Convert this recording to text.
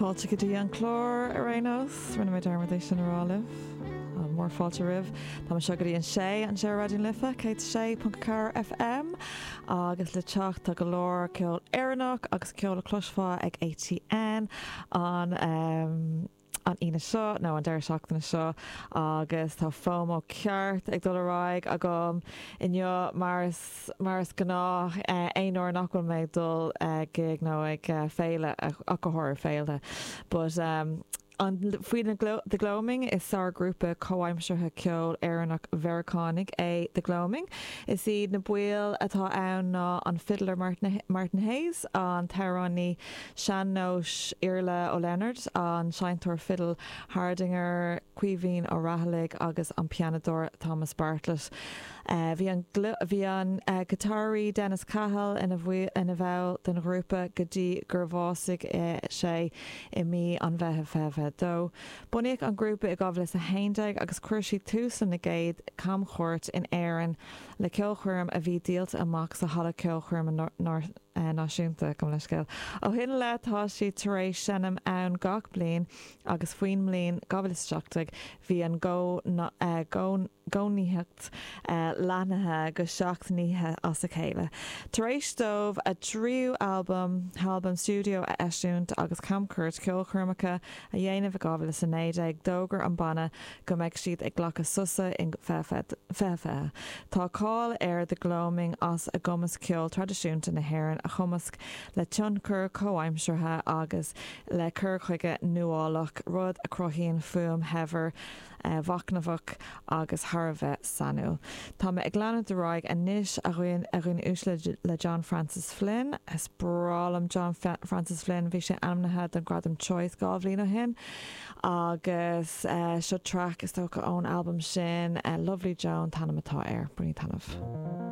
Fáilte go dtí an clár ar aon nós. Rinne mé dearmad é sin a rá libh. Tá mór fáilte romhaibh. Tá mé anseo go dtí an sé anseo ar Raidió na Life, 106.4 FM. Agus le teacht tá go leor ceol Éireannach agus ceol a chloisfeá ag ATN an an Aoine seo, nó an deireadh seachtaine seo, agus tá FOMO ceart ag dul ar aghaidh agam inniu mar is mar is gnáth, aon uair nach bhfuil mé ag dul chuig gig nó ag féile, ach go háirithe féilte. But um an, faoi The Gloaming, is sár grúpa comhaimseartha ceoil Éireannach-Mheiriceánaigh é The Gloaming. Is iad na baill atá ann ná an fidléir Martin Hayes, an t-amhránaí sean-nóis Iarla Ó Lionaird, an seinnteoir fidil Hardanger Caoimhín Ó Raghallaigh agus an pianódóir Thomas Bartlett. Bhí an giotáraí Dennis Cahill ina bhall den ghrúpa go dtí gur bhásaigh sé i mí an Mheithimh 2022. Bunaíodh an grúpa i 2011 agus chuir siad tús lena gcéad camchuairt in Éirinn le ceolchoirm a bhí díolta amach sa Halla Ceolchoirme Náisiúnta, gabh mo leithscéal. Ó shin i leith tá siad tar éis seinm ann gach bliain. agus faoin mbliain 2017 bhí a gcónaitheacht leathnaithe go seacht n-oíche as a chéile. Tar éis dóibh a dtríú halbam, halbam stiúideo a eisiúint agus camchuairt ceolchoirmeacha a dhéanamh i 2019, d'fhógair an banna go mbeadh siad ag glacadh sosa in 2020. Tá cáil ar The Gloaming as a gcumas ceol traidisiúnta na hÉireann a chumasc le tionchair chomhaimseartha agus le cur chuige nuálach, rud a chruthaíonn fuaim shaibhir, mhachnamhach agus thar a bheith sainiúil. Tá mé ag leanúint ar aghaidh anois, a dhaoine uaisle, le John Francis Flynn. Is breá liom John Francis Flynn. Bhí sé ainmnithe don Ghradam Choice dhá bhliain ó shin agus seo traic, is dócha, ón albam sin. Lovely Joan an t-ainm atá air. Bainigí taitneamh.